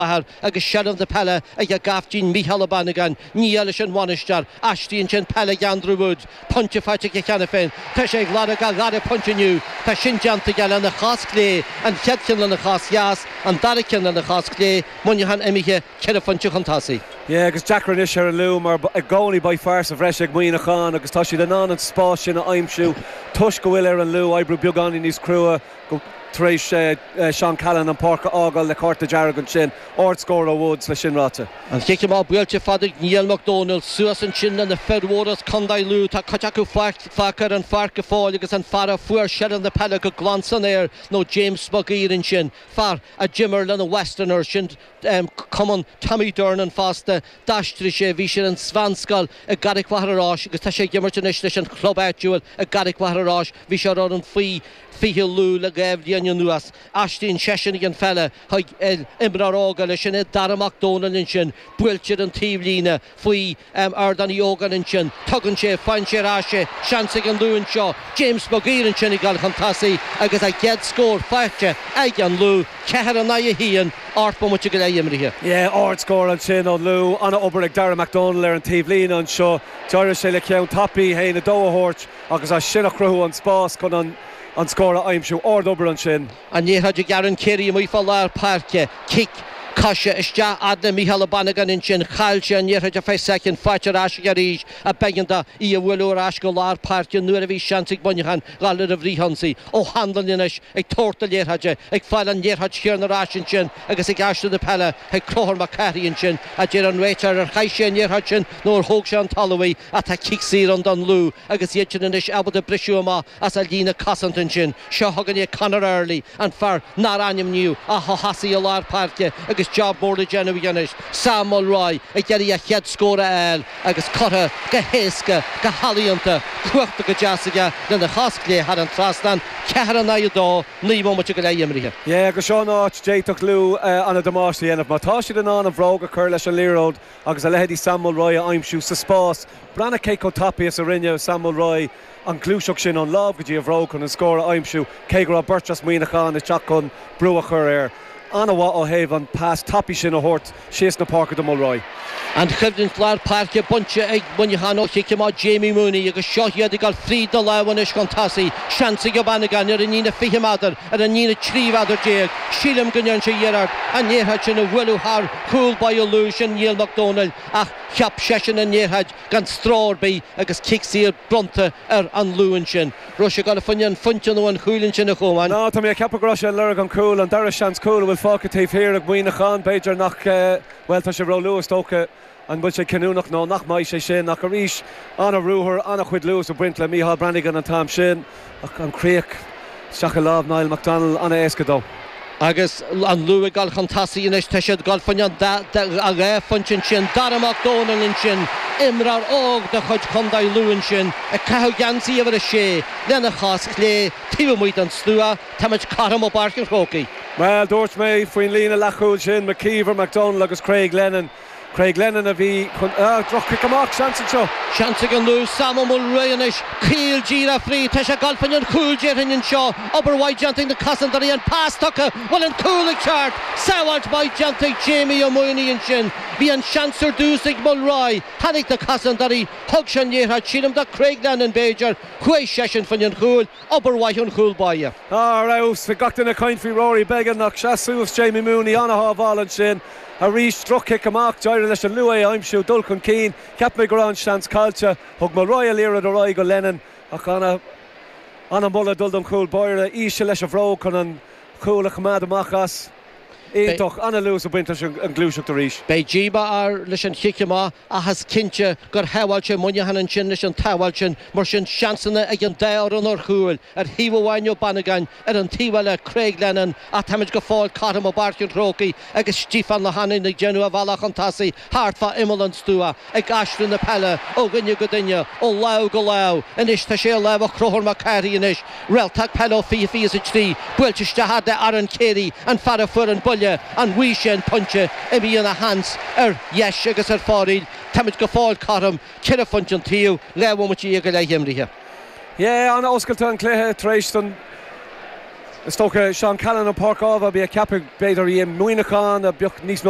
athair agus seilbh na peile ag a gcaiftín Mícheál Ó Banagáin, nia leis an bhainisteoir. Aistríonn sé an pheil ag Andrew Woods, pointe faighte aige cheana féin. Tá sé ag lorg a dhara pointe inniu. Tá sin déanta aige lena chos chlé, an chéad cheann lena chos dheas, an dara ceann lena chos chlé, Muineachán imithe ceithre phointe chun tosaigh. Yeah agus deacair anois ar an Lú mar i gcónaí beidh fear sa bhreis ag Muineachán agus tá siad in ann an spás sin a aimsiú toisc go bhfuil ar an Lú oibriú beagáinín níos crua tar éis Seán Callan an páirc a fhágáil le cárta dearg ansin. Ardscór ó Woods le sin ráite. An cic amach buailte fada ag Niall Mac Dónaill. Suas ansin le na fir mhóra as Condae Lú. Tá cuid acu fágtha ar an pháirc go fóill agus an fear a fuair seilbh na peile go glan san aer nó James Maguire ansin, fear a d'imir le na Westerns, sin cumann Tommy Durnin fosta, d'aistrigh sé, bhí sé ar an mheánscoil i gCarraig Mhachaire Rois agus tá sé ag imirt anois leis an chlub áitiúil i gCarraig Mhachaire Rois, bhí sé ar fhoireann faoi 20 Lú le dhá bhliain anuas. Aistríonn seisean an pheil chuig imreoir óg eile sin é Dara Mac Dónaill ansin, buailte ar an taobhlíne faoi Ardán Uí Ógáin ansin, tugann sé faigheann sé ar ais é, seans ag an Lú anseo, James Maguire ansin ag dul chun tosaigh agus a gcéad scór faighte ag an Lú, 4 in aghaidh 1, ocht mbomaite go leith imrithe. Yeah, ard scór ansin ón Lú, ana obair ag Darragh McDonnell ar an taobhlíne anseo, d'éirigh leis ceann tapaidh haon a 2 a thabhairt, Agus as sin ag cruthú an spás chun an scór a aimsiú. Ard-obair ansin. An liathróid ag Ciarán Treacy amuigh fá lár páirce. Cic. Coise. Isteach fhad le Micheál Ó Banagáin ansin. Chaill sé an liathróid ar feadh soicind. Faighte ar ais aige arís. Ach b'éigean dó Í a bhualadh ar ais go lár páirce nuar a bhí seans ag Muineachán dhul ar an bhfrith-ionsaí. Ó Hanlon anois. Ag tabhairt na liathróide. Ag fáil an liathróid chiarn ar ais ansin. Agus ag aistriú na peile, chuig Conchúr Mac Cárthaigh ansin, a deir an réiteoir, ar chaith sé an liathróid sin nó ar thóg sé ón talamh í, ach tá cic saor ann don Lú agus iad sin anois ábalta briseadh amach as an líne cosanta ansin. Seo chugainn é Conor Early, an fear nár ainmníodh ach a thosaigh i lár páirce agus job mór le déanamh aige anois. Sam Mulroy ag iarraidh a chéad scór a fháil agus curtha go héasca, go healaíonta, cuartha go deas aige lena chos chlé thar an trasnán, 4 in aghaidh 2. Naoi mbomaite go leith imrithe. Yeah, agus seo an áit, a d'fhéadfadh Lú an-damáiste a dhéanamh. Má tá siad in ann an bhróg a chur leis an liathróid agus a leithéidí Sam Mulroy a aimsiú sa spás, breathnaigh cé chomh tapaidh is a rinne Sam Mulroy an gluaiseacht sin ón lámh go dtí a bhróg chun an scór a aimsiú, cé go raibh beirt as Muineachán ag teacht chun brú a chur air. An-mhaith ó thaobh an pas tapaidh sin a thabhairt síos na páirce do Mulroy. An choimhlint lár páirce bainte ag Muineachán ó chic amach Jamie Mooney agus seo iad ag dul fríd na lámha anois chun tosaigh. Seans ag Ó Banagáin ar an líne 20 meadar, ar an líne 13 mheadar. Sílim go ndéanfaidh sé iarracht an liathróid sin a bhualadh thar chúl báire Lú, sin Niall Mac Dónaill, ach cheap seisean an liathróid gan stró ar bith agus cic saor bronnta air an Lú ansin. raibh sé ag gabháil fá choinne an phointe nó an chúil ansin a Chomáin. Nó, tá mé ag ceapadh go raibh sé ag lorg an chúil, an dara seans cúl a bhfuil fágtha taobh thiar ag Muineachán. B'fhéidir nach, bhuel, tá sé ró-luath, is dócha an bhfuil sé cinniúnach nó nach mbeidh sé sin, ach arís, an-ruathar, an-chuid luas ag baint le Micheál Brannigan an t-am sin, ach an chríoch isteach i lámh Niall McDonnell, an-éasca dó. Agus an Lú ag dul chun tosaigh anois, tá siad ag dul fá choinne an dá phointe ansin. Dara Mac Dónaill ansin, imreoir óg de chuid Chontae Lú ansin, ag caitheamh geansaí uimhir a sé lena chos chlé taobh amuigh den stua. Táimid cothrom i bPáirc an Chrócaigh. Bhuel, dúirt mé faoin líne leathchúil sin, McKeever, McDonnell agus Craig Lennon. Craig Lennon a bhí chun, ah, droch-chic amach, seans anseo. Seans ag an Lú, Sam Ó Mulroy anois, caol díreach fríd, tá sé ag gabháil fá choinne an chúil déarfainn anseo, obair mhaith déanta ag na cosantóirí, an pas tugtha, an bhfuil an cúl ag teacht, sábháilt mhaith déanta ag Jamie Ó Maonaigh ansin, bhí an seans ar dtús ag Mulroy, tháinig na cosantóirí, thug sé an liathróid sílim do Craig Lennon b'fhéidir, chuaigh seisean fá choinne an chúil, obair mhaith ón chúl báire. Ar fheabhas, bhí gach duine ag caint faoi Rory Beggan ach sheas suas Jamie Mooney, ana-shábháil ansin, Arís, droch-chic amach. D'éirigh leis an Lú é a aimsiú, dul chun cinn. Cheap mé go raibh an seans caillte. Thug Mulroy an liathróid ar aghaidh go Lennon ach an-mholadh ag dul don chúl báire. Íseal leis an bhróg chun an chúl a choimeád amach as. Iontach. An-luas ag baint leis an ngluaiseacht arís. Beidh díomá air leis an chic amach ach is cinnte gur shábháil sé Muineachán ansin leis an tsábháil sin. Mar sin, seansanna ag an dá fhoireann ar chúil ar thaobh amháin ó Bannigan. Ar an taobh eile, Craig Lennon, ach táimid go fóill cothrom i bPáirc an Chrócaigh agus Stiofán Ó hAnluain ag déanamh a bhealach chun tosaigh thart fá imeall an stua, ag aistriú na peile ó dhuine go duine, ó lámh go lámh. Anois tá sé i lámha Chonchúir Mac Cárthaigh anois, réalta peile ó fiche fiche's a trí, buailte isteach fhad le Aaron Carey, an fear a fuair an buille, an bhfaighidh sé an pointe? Imíonn a sheans ar dheis agus ar fóraoil, táimid go fóill cothrom, ceithre phointe an taobh, dhá bhomaite dhéag go leith imeartha. Yeah an-oscailte an cluiche tar éis don, is dócha, Seán Callaghan an páirc ámh, bhí ag ceapadh, b'fhéidir, í i Muineachán, a bheadh níos mó